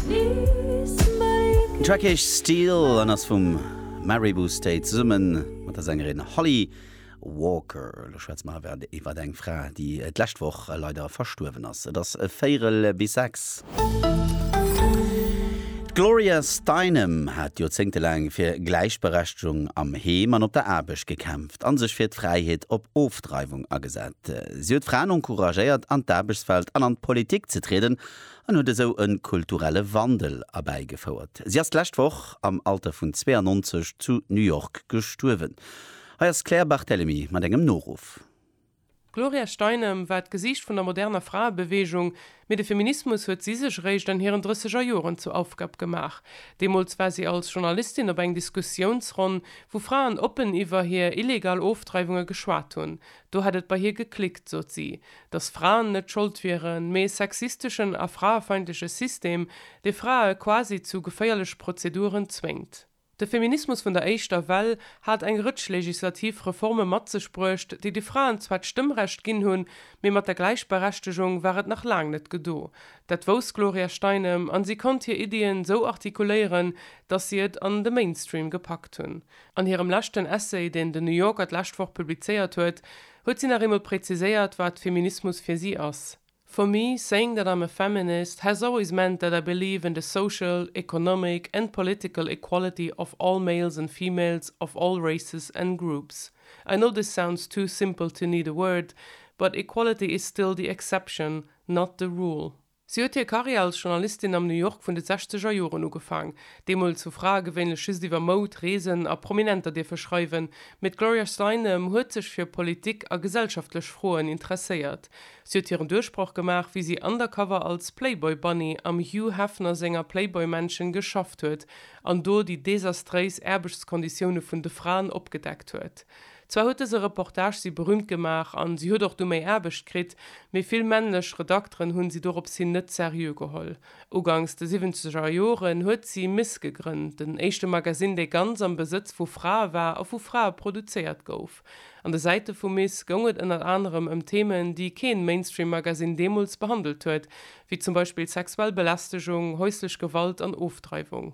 Den Track heescht Steel an ass vum Maribou State zesumme mat der Sängerin Holly Walker. Elo schwätze mer awer iwwer eng Fra, déi d'lescht Woch leider verstuerwen ass. Et ass véierel bis sechs. D'Gloria Steinem hat joerzéngtelaang fir Gläichberechtegung am Heem an op der Aarbecht gekämpft a sech fir d'Fräiheet op Ofdreiwung agesat. Si huet Fraen encouragéiert, an d'Aarbechtswelt an an d'Politik ze trieden an huet esou e kulturelle Wandel erbäigefouert. Si ass d'lescht Woch am Alter vun 92 zu New York gestuerwen. Hei ass d'Claire Barthelemy mat engem Noruff. D'Gloria Steinem war d'Gesiicht vun der moderner Fraebeweegung, mee de Feminismus huet si sech eréischt an hiren Drësseger Joren zur Aufgab gemaach. Deemools war si als Journalistin op eng Diskussiounsronn, wou Fraen oppen iwwer hir illegal Ofdreiwunge geschwat hunn. Do hätt et bei hir geklickt, sot si, datt Fraen net Schold wieren, mee e sexisteschen a fraefeindleche System, dee Frae quasi zu geféierleche Prozeduren zwéngt. De Feminismus vun der éischter Well hat eng Rëtsch legislativ Reforme mat sech bruecht, déi de Fraen zwar d'Stëmmrecht ginn hunn, mee mat der Gläichberechtegung war et nach laang net gedo. Dat wousst d'Gloria Steinem an si konnt hir Iddien sou artikuléieren, datt si et an de Mainstream gepackt hunn. An hirem leschten Essay, deen den New Yorker d'lescht Woch publizéiert huet, huet si nach eemol präziséiert, wat Feminismus fir si ass, For me, saying that I'm a feminist has always meant that I believe in the social, economic and political equality of all males and females of all races and groups. I know this sounds too simple to need a word, but equality is still the exception, not the rule. Si huet hir Karriär als Journalistin am New York vun de sechzeger Joren ugefaang. Deemools hu Frae gewéinlech just iwwer Moud, Reesen a Prominenter dierfe schreiwen, mee d'Gloria Steinem huet sech fir Politik a gesellschaftlech Froen interesséiert. Si huet hiren Duerchbroch gemaach, wéi si undercover als Playboy Bunny am Hugh Hefner senger Playboy Mansion geschafft huet an do déi desastréis Aarbechtskonditioune vun de Fraen opgedeckt huet. Zwar huet dëse Reportage si berühmt gemaach an si huet och du méi Aarbecht kritt, mee vill männlech Redakteren hunn si dorops hin net seriö geholl. Ugangs de siwwenzeger Joren huet si Ms gegrënnt, den éischte Magazine, dee ganz am Besëtz vu Frae war a vu Frae produzéiert gouf. An de Säite vu Ms goung et ënnert anerem ëm Themen, déi keen Mainstream-Magazine deemools behandelt huet, wéi zum Beispill sexuell Belästegung, häuslech Gewalt an Ofdreiwung.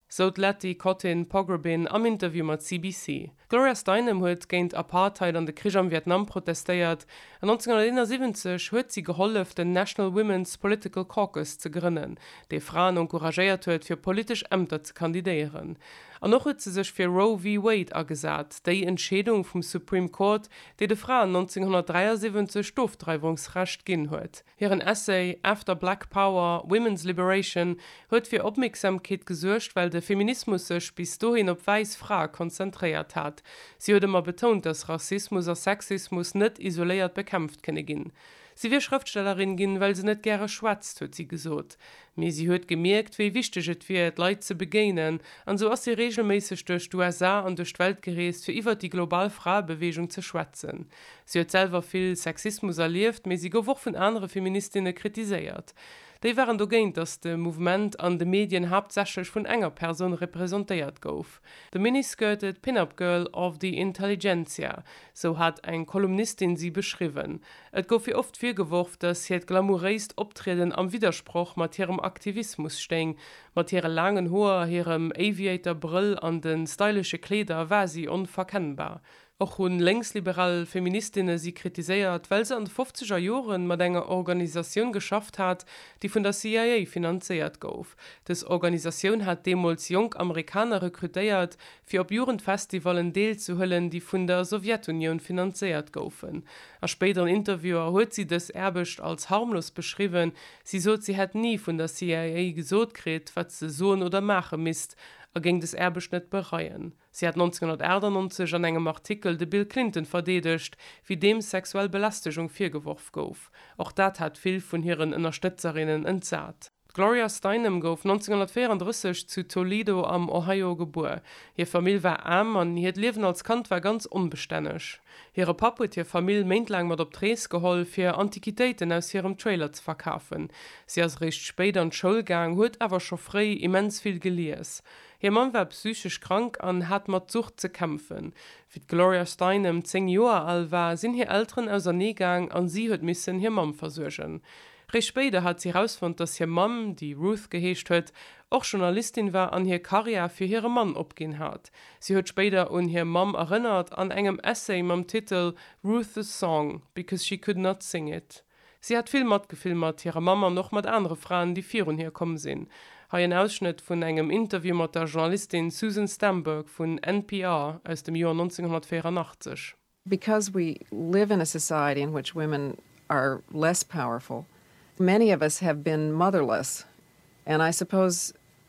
sou d'Letty Kotin Pogrebin am Interview mat CBC. D'Gloria Steinem huet géint Apartheid an de Krich am Vietnam protestéiert, an 1971 huet si gehollef den National Women's Political Caucus ze grënnen, dee Fraen encouragéiert huet fir politesch Ämter ze kandidéieren. An och huet se sech fir Roe v. Wade agesat, déi Entscheedung vum Supreme Court, déi de Fraen 1973 d'Ofdreiwungsrecht ginn huet. Hiren Essay After Black Power, Women's Liberation huet fir Opmierksamkeet gesuergt, well de Feminismus sech bis dohin op wäiss Frae konzentréiert hat. Si huet ëmmer betount, datt Rassismus a Sexismus net isoléiert bekämpft kënne ginn. Si wier Schrëftstellerin ginn, well se net gäre schwätzt, huet si gesot. Mee si huet gemierkt, wéi wichteg et wier, d'Leit ze begéinen. An esou ass si reegelméisseg duerch d'USA an duerch d'Welt gereest, fir iwwert déi global Fraebeweegung ze schwätzen. Si huet selwer vill Sexismus erlieft, mee si gouf och vun anere Feministinne kritiséiert. Déi waren dogéint, datt de Mouvement an de Medien haaptsächlech vun enger Persoun representéiert gouf, The mini-skirted pin-up girl of the intelligentsia, sou hat eng Kolumnistin si beschriwwen. Et gouf hir oft virgeworf, datt hiert glamouréist Optrieden am Widdersproch mat hirem Aktivismus stéing. Mat hire laangen Hoer, hirem Aviator-Brëll an de stylesche Kleeder war si onverkennbar. Och hu lénksliberal Feministinne si kritiséiert, well se an de fofzeger Jore mat enger Organisatioun geschafft hat, déi vun der CIA finanzéiert gouf. Dës Organisatioun hat deemools jonk Amerikaner rekrutéiert, fir op Jugendfestivallen deelzehuelen, déi vun der Sowjetunioun finanzéiert goufen. A spéideren Interviewer huet si dës Aarbecht als harmlos beschriwwen. Si sot, si hätt ni vun der CIA gesot kritt, wat se soen oder maache misst, a géing des Aarbecht net bereien. Si hat 1998 an engem Artikel de Bill Clinton verdeedegt, wéi deem sexuell Belästegung virgeworf gouf. Och dat hat vill vun hiren Ënnerstëtzerinnen entsat. D'Gloria Steinem gouf 1934 zu Toledo am Ohio gebuer. Hir Famill war aarm an hiert Liewen als Kand war ganz onbestänneg. Hire Papp huet hir Famill méintlaang mat op d'Rees geholl, fir Antiquitéiten aus hirem Trailer ze verkafen. Si ass eréischt spéit an d'Schoul gaang, huet awer scho fréi immens vill gelies. Hir Mamm war psychesch krank an hat mat Sucht ze kämpfen. Wéi d'Gloria Steinem zéng Joer al war, sinn hir Elteren ausernee gaang a si huet missen hir Mamm versuergen. Réischt spéider hat si erausfonnt, dass hir Mamm, déi Ruth geheescht huet, och Journalistin war an hir Karriär fir hire Mann opginn hat. Si huet spéider un hir Mamm erënnert an engem Essay mam Titel Ruth the song, because she could not sing it. Si hat vill Matgefill mat hirer Mamm an och mat anere Fraen, déi virun hir komm sinn. Hei en Ausschnëtt vun engem Interview mat der Journalistin Susan Stamberg vun NPR aus dem Joer 1984. Because we live in a society in which women are less powerful, many of us have been motherless and I suppose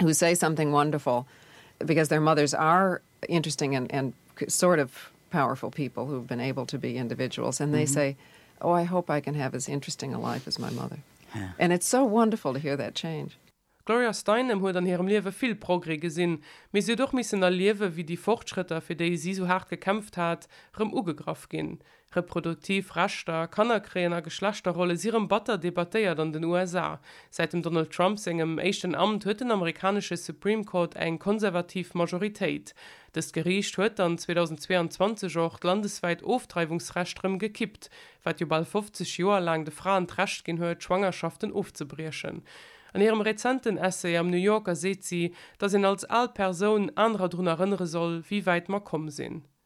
who say something wonderful because their mothers are interesting and and sort of powerful people who have been able to be individuals and they mm -hmm. say oh I hope I can have as interesting a life as my mother yeah. and it's so wonderful to hear that change. D'Gloria Steinem huet an hirem Liewe vill Progrès gesinn, mee si huet och missen erliewen, wéi déi Fortschrëtter, fir déi si sou haart gekämpft hat, rëm ugegraff ginn. Reproduktiv Rechter, Kannerkréien a Geschlechterrolle si rëm batter debattéiert an den USA. Säit dem Donald Trump sengem éischten Amt huet den amerikanesche Supreme Court eng konservativ Majoritéit. Dëst Geriicht huet dann 2022 och d'landeswäit Ofdreiwungsrecht rëm gekippt, wat jo bal 50 Joer laang de Fraen d'Recht ginn huet, Schwangerschaften ofzebriechen. An hirem rezenten Essay am New Yorker seet si, datt een als al Persoun anerer drun erënnere soll, wéi wäit mer komm sinn.